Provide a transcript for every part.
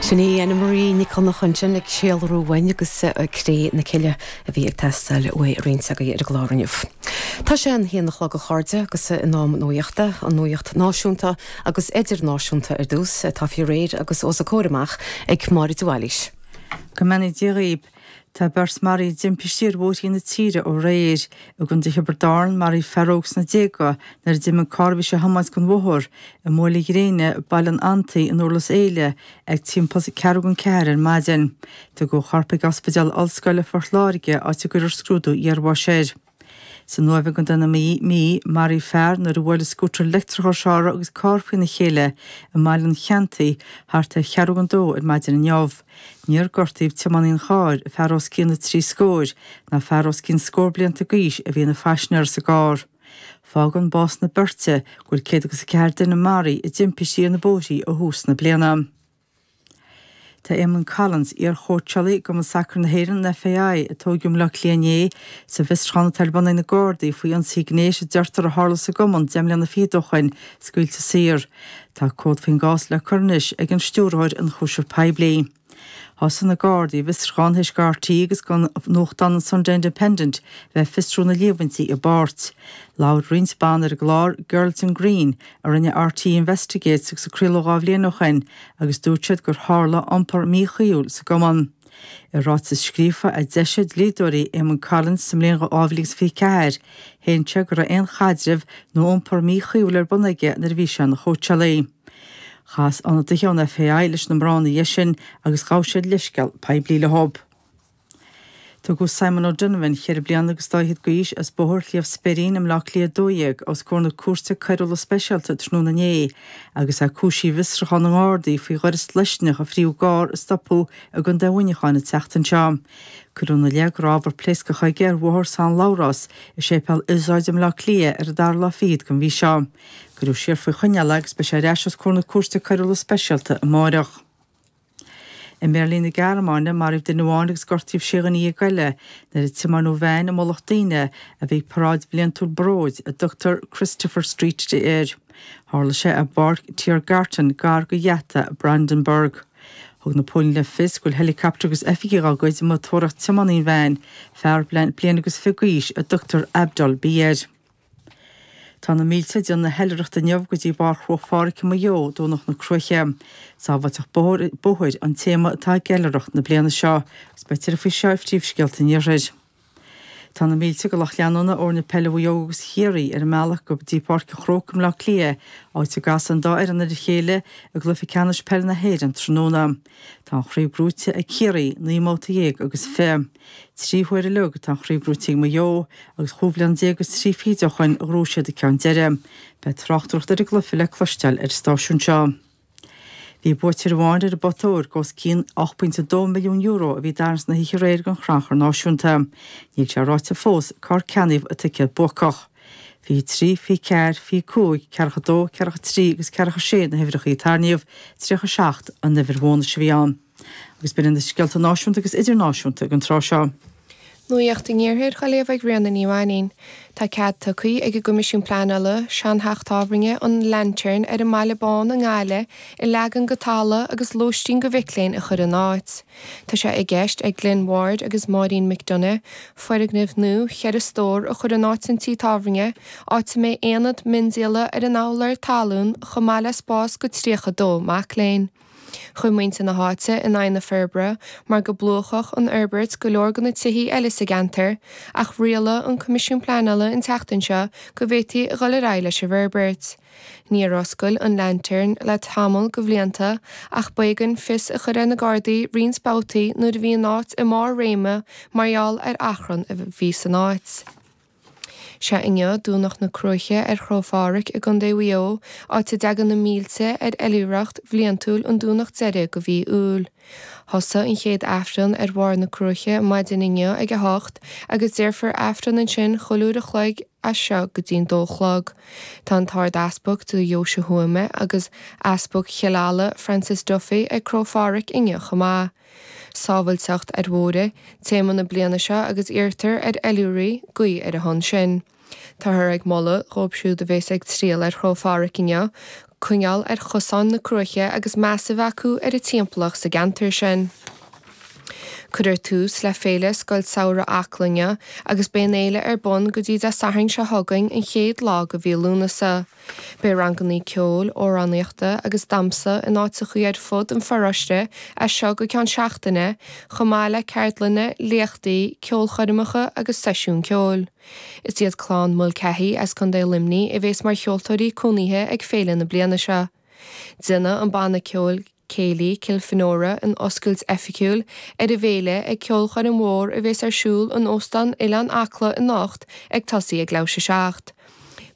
Sin í Annemarie Nic Dhonnacha ansin ag céilúradh uainn agus Cré na Cille a bhí ag teastáil uaidh roinnt againn ar an gclár inniu. Tá sé a haon a chlog a chairde agus in am nuachta, an nuacht náisiúnta agus idirnáisiúnta ar dtús, atá faoi réir agus os a comhair amach ag Máire de Bhailís. Go mbeannaí Dia dhaoib. Tá beirt maraithe i dtimpistí ar bhóithrí na tíre aréir. I gContae Thiobraid Árann, maraíodh fear óg sna déaga nuair a d'imigh carr a bhí sé a thiomáint den bhóthar i mBuaile Ghréine Baile an Fhantaí i nDurlas Éile ag timpeall a ceathrú chun a ceathair ar maidin. Tugadh a chorp ag Ospidéal Ollscoile Phort Láirge, áit a gcuirfear scrúdú iarbháis air. San Uaimh i gContae na Mí, maraíodh fear nuair a bhuail a scútar leictreach ar shiúl air agus carr faoina chéile i mBaile an Cheanntaí thart ar cheathrú chun a dó ar maidin inniu. Níor gortaíodh tiománaí an chairr, fear os cionn na trí scóir, ná fear os cionn scór blianta d'aois a bhí ina phaisinéara sa gcarr. Fágann bás na beirte go bhfuil céad agus a ceathair duine maraithe i dtimpistí ar na bóithrí ó thús na bliana. Tá Éamonn Collins, iar-chóitseálaí i gcumann sacair na hÉireann, an FAI, a tóigeadh i mBleá Cliath inné, sa bhfiosrúchán atá ar bun ag na Gardaí faoi ionsaí gnéis a deirtear a tharla sa gcumann deich mbliana fichead ó shoin, scaoilte saor. Tá comhad faoin gcás le cur anois ag an Stiúrthóir Ionchúiseamh Poiblí. Thosaigh na Gardaí a bhfiosruchán théis go RTÉ agus go nuachtán an Sunday Independent bheith ag fiosrú na líomhaintí i bpáirt. Labhair roinnt ban ar an gclár, Girls in Green, a rinne RTÉ Investigates agus a craoladh dhá bhliain ó shin agus dúirt siad gur tharla iompar míchuíúil sa gcumann. I ráiteas scríofa a d'eisigh dlíodóirí Éamonn Collins sa mbliain 2024, shéan sé go raibh aon chaidreamh nó iompar míchuíúil ar bun aige nuair a bhí sé ina chóitseálaí. Chas ionadaithe ón FAI leis na mná ina dhiaidh sin agus ghabh siad leithscéal poiblí leo. Tugadh Simon O'Donovan, cheithre bliana agus dá fhichead d'aois, as Bóthar Shliabh Speirín i mBleá Cliath 12, os comhair na Cúirte Coiriúla Speisialta tráthnóna inné agus é cúisithe i bhfiosrúchán na nGardaí faoi ghaireas pléascach a fríothadh i gcarr a stopadh i gContae Mhuineacháin an tseachtain seo. Cuireadh ina leith go raibh ábhar pléascach aige ar Bhóthar San Labhrás i Séipéal Iosóid i mBleá Cliath ar an dara lá fichead den mhí seo. Cuireadh siar faoi choinneáil é agus beidh sé ar ais os comhair na Cúirte Coiriúla Speisialta amáireach. I mBeirlín na Gearmáine, maraíodh duine amháin agus gortaíodh sé dhuine dhéag eile nuair a tiomáineadh veain i mullach daoine a bhí ag paráid bhliantúil Bróid, a dtugtar Christopher Street Day air. Tharla sé i bPáirc Tiergarten, gar go gheata Brandenburg. Thug na póilíní le fios go bhfuil helicaptar agus oifigigh dá gcuid amuigh ag tóraíocht tiománaí an veain, fear bliain agus fiche d'aois a dtugtar Abdul B. air. Tá na mílte ag déanamh na hoilithreachta inniu go dtí barr Chruach Phádraig i Maigh Eo, Domhnach na Cruaiche. 'Sábháilteacht Bóthair' an téama atá ag oilithreacht na bliana seo, agus beidh tuilleadh faoi seo i bPríomhscéalta an Iarthair. Tá na mílte go lucht leanúna fhoirne peile Mhaigh Eo agus Chiarraí ar a mbealach go dtí Páirc an Chrócaigh i mBleá Cliath, áit a gcasfaidh an dá fhoireann ar a chéile i gCluiche Ceannais Peile na hÉireann tráthnóna. Tá an chraobh gnóite ag Ciarraí, naoi mbabhta déag agus fiche. Trí huaire a leag tá an chraobh gnóite ag Maigh Eo agus chúig bliana déag agus trí fichid ó shin a ghnóthaigh siad an ceann deiridh. Beidh tráchtaireacht ar an gcluiche le cloisteáil ar an stáisiún seo. Bhí buaiteoir amháin ar an bpota óir go os cionn €8.2 milliún a bhí i dtarraingt na hoíche aréir ag an gCrannchur Náisiúnta. Níl sé ráite fós cár ceannaíodh an ticéad buacach. Fiche 3, fiche 4, fiche 5, ceathracha 2, ceathracha 3 agus ceathracha 6 na huimhreacha a tarraingíodh, 37 an uimhir bhónais a bhí ann. Agus b'in iad na scéalta náisiúnta agus idirnáisiúnta ag an tráth seo. Nuacht an Iarthair dá léamh ag Ríona Ní Mhainín. Tá cead tugtha ag an gCoimisiún Pleanála seantheach tábhairne an Lantern ar an mBaile Bán i nGaillimh a leagan go talamh agus lóistín go mhic léinn a chur ina áit. Tá sé i gceist ag Glen Ward agus Máirín McDonagh foirgneamh nua cheithre stór a chur in áit an tí tábhairne, áit a mbeidh aonad miondíola ar an urlár talún chomh maith le spás go 32 mac léinn. Chuir muintir na háite in aghaidh na forbartha mar go bplúchfadh an fhorbairt go leor de na tithí eile sa gceantar ach rialaigh an Coimisiún Pleanála an tseachtain seo go bhféadfaí a dhul ar aghaidh leis an bhforbairt. Níor oscail an Lantern le tamall go bhlianta ach b'éigean fios a chur ar na Gardaí roinnt babhtaí nuair a bhí an áit i mbarr réime mar gheall ar achrann a bhí san áit. Sea, inniu, Domhnach na Cruaiche ar Chró Phádraig i gContae Mhaigh Eo, áit a dtagann na mílte ar oilithreacht bhliantúil an Domhnach deiridh go mhí Iúil. Thosaigh an chéad Aifreann ar bharr na Cruaiche maidin inniu ag a hocht agus déarfar Aifreann ansin chuile uair a chloig as seo go dtí'n dó a chlog. Tá an tArd-Easpag do Dheoise Thuama agus Easpag Chill Ala, Francis Duffy, ag Cró Phádraig inniu chomh maith. Sábháilteacht ar Bhóithre téama na bliana seo agus iarrtar ar oilithrigh guí ar a shon sin. Táthar ag moladh dhóibh siúd a bhéas ag triall ar Chró Phádraig inniu coinneáil ar chosáin na cruaiche agus meas a bheith acu ar an dtimpeallacht sa gceantar sin. Cuireadh tús le Féile Scoil Samhraidh Acla inniu agus beidh an fhéile ar bun go dtí Dé Sathairn seo chugainn an chéad lá go mhí Lúnasa. Beidh rangannaí ceoil, amhránaíochta agus damsa in áiteachaí ar fud an pharóiste as seo go ceann seachtaine, chomh maith le ceardlanna, léachtaí, ceolchoirmeacha agus seisiúin ceoil. Is iad clann Mulcahy as Contae Luimní a bhéas mar cheoltóirí cónaithe ag féile na bliana seo. Déanfaidh an banna ceoil. Céilí Kilfenora an oscailt oifigiúil ar an bhféile ag ceolchoirm mhór a bhéas ar siúl in Óstán Oileán Acla anocht ag tosaí ag leathuair tar éis a seacht.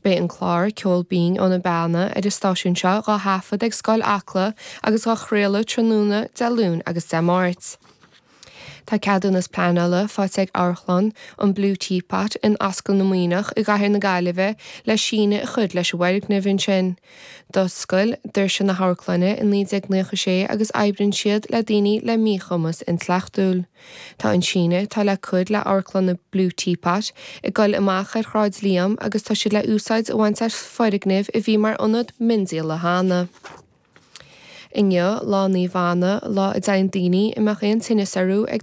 Beidh an clár Ceol Binn ó na Beanna ar an stáisiún seo dhá thaifeadadh ag Scoil Acla agus á chraoladh tráthnóna Dé Luain agus Dé Máirt. Tá ceadúnas pleanála faighte ag Amharclann an Blue Teapot in Ascaill na Maoineach i gCathair na Gaillimhe le síneadh a chur leis an bhfoirgneamh ansin. D'oscail doirse na hamharclainne i 1996 agus oibríonn siad le daoine le míchumas intleachtúil. Tá an síneadh atá le cur le Amharclann an Blue Teapot ag goil amach ar Shráid Liam agus tá siad le úsáid a bhaint as foirgneamh a bhí mar ionad miondíola cheana. Inniu, Lá Naomh Anna, lá a dtéann daoine a mbeadh aon tinneas orthu ag.